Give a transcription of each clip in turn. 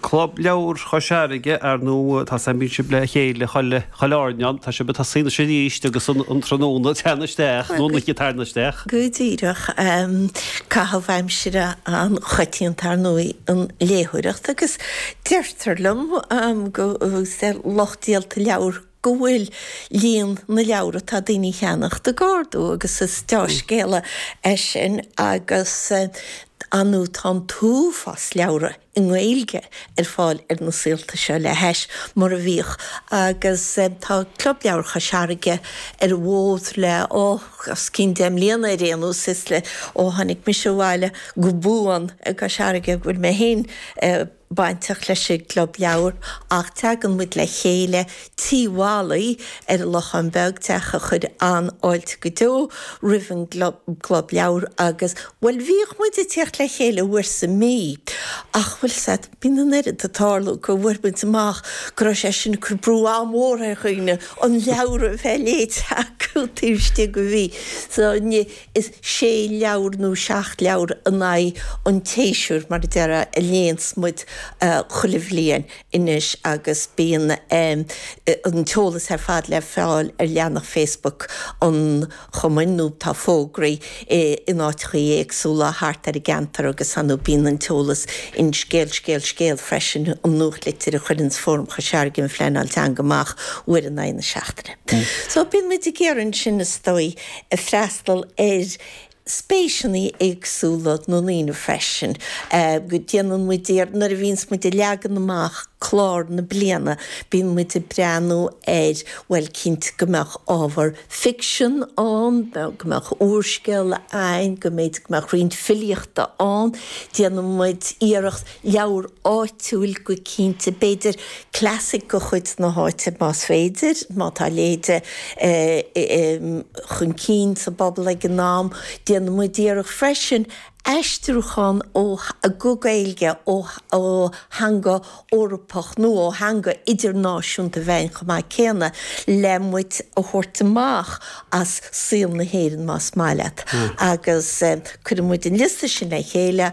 Club Leabhar Chois Fharraige, ar ndóigh, uair sa mí bíonn sibh le chéile, a Thrill, Airneáin, tá sibh ag tosú arís agus an tráthnóna tar éis teacht, nó an oíche tarna isteach. Go díreach, caitheamh aimsire an-choitianta, ar ndóigh, an léitheoireacht agus deirtear liom go bhfuil lucht díolta leabhar go bhfuil líon na leabhar atá daoine a cheannacht ag ardú agus is deá-scéala é sin agus ar ndóigh tá an t-uafás leabhra i nGaeilge ar fáil ar na saolta seo le hais mar a bhíodh agus tá Club Leabhar Chois Fharraige ar an bhfód le, ó, os cionn deich mbliana ar aon nós, is é ó tháinig mise abhaile go buan i gCois Fharraige go bhfuil mé féin i. bainteach leis an gClub Leabhar ach tagann muid le chéile Tí Mholly ar an Lochán Beag, teach a chuir an-fháilte go deo roimh an gClub Leabhar agus, bhuel, bhíodh muid ag tíocht le chéile uair sa mí ach, bhuel, bíonn an oiread ag tarlú go bhfuair muid amach go raibh sé sin ag cur brú an-mhór ar dhaoine an leabhar a bheith léite acu taobh istigh de mhí. So, ní. is sé leabhar nó seacht leabhar in aghaidh an tséasúir, mar a déarfá, a léanns muid chuile bhliain anois agus bíonn an t-eolas ar fad le fáil ar leathanach Facebook an chumainn nó tá fógraí in áiteachaí éagsúla thart ar an gceantar agus bíonn an t-eolas in Scéal, Scéal, Scéal freisin, an nuachtlitir a chuireanns Fóram Chois Fharraige um Phleanáil Teanga amach uair in aghaidh na seachtaine. So bíonn muid ag iarraidh ansin, is dóigh, ag freastal ar spéiseanna éagsúla na ndaoine freisin. Déanann muid, nuair a bhíonns muid ag leagan amach clár na bliana, bíonn muid ag breathnú ar, bhuel, cinnte go mbeadh ábhar ficsin ann, go mbeadh úrscéal a'ainn, go mb'fhéidir go mbeadh roinnt filíochta ann. Déanann muid iarracht. Leabhar áitiúil go cinnte, b'fhéidir clasaic de chuid na háite más féidir, má tá léi dul chun cinn sa bpobal ag an am. Déanann muid iarracht freisin aistriúchán go Gaeilge ó theanga Eorpach nó ó theanga idirnáisiúnta a bheith ann chomh maith céanna le muid a thabhairt amach as saol na hÉireann más maith leat agus cuireann muid an liosta sin le chéile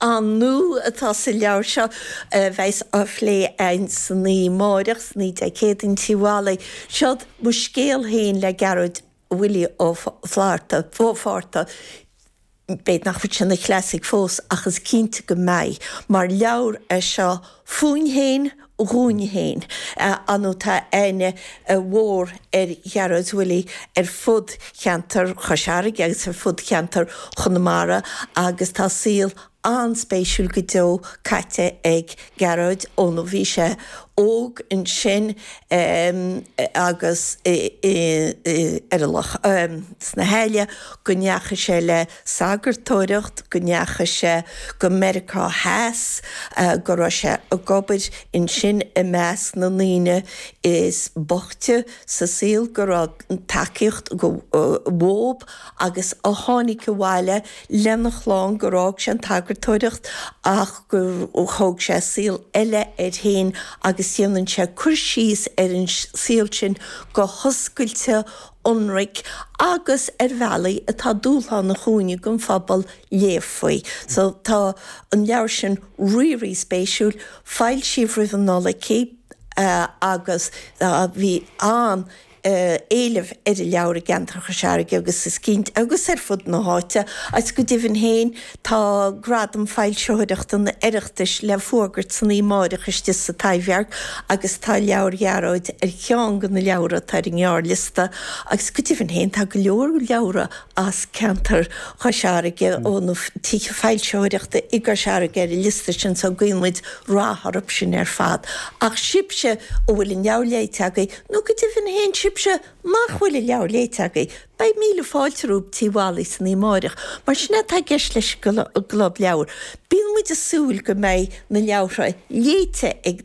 Ar ndóigh tá an leabhar seo a bheas á phlé a'inn san oíche amárach, san oíche Dé Céadaoin, in Tí Mholly, seod Mo Scéal Féin le Gearóid Willie Ó Flaithearta, Ó Fátharta. B'fhéidir nach bhfuil sé ina chlasaic fós ach is cinnte go mbeidh, mar leabhar é seo Fúinn féin, dhúinn féin, ar ndóigh tá aithne mhór ar Ghearóid Willie ar fud cheantar Chois Fharraige agus ar fud cheantar Chonamara agus tá saol an-spéisiúil go deo caite ag Gearóid ó bhí sé óg ansin agus ar an loch sna hAille go ndeachaigh sé le sagartóireacht, go ndeachaigh sé go Meiriceá Theas, go raibh sé ag obair ansin i measc na ndaoine is boichte sa saol, go raibh tacaíocht dhóibh agus a tháinig abhaile lena chlann, gur fhág sé an tsagartóireacht ach gur thóg sé saol eile air féin agus déanann sé cur síos ar an saol sin go hoscailte ionraic agus ar bhealaí atá dúshlánach dhúinne don phobal léamh faoi. So tá an leabhar sin rí-rí-spéisiúil. Foilsíodh roimh an Nollaig í agus bhí an-éileamh ar an leabhar i gceantar Chois Fharraige agus is cinnte, agus ar fud na háite, agus go deimhin féin, Tá Gradam Foilsitheoireachta an Oireachtais le fuagairt san oíche amáireach istigh sa Taibhdhearc agus tá leabhar Ghearóid ar cheann de na leabhra atá ar an ngearrliosta agus go deimhin féin tá go leor leabhra as ceantar Chois Fharraige ó na tithe foilsitheoireachta i gCois Fharraige ar an liosta sin so guímid rath orthu sin ar fad. Ach sibhse a bhfuil an leabhar léite agaibh nó go deimhin féin sibhse nach bhfuil an leabhar léite agaibh, Beidh míle fáilte romhaibh Tigh Mholly san oíche amáireach mar sin é atá i gceist leis an gClub Leabhar. Bíonn muid ag súil go mbeidh na leabhartha léite ag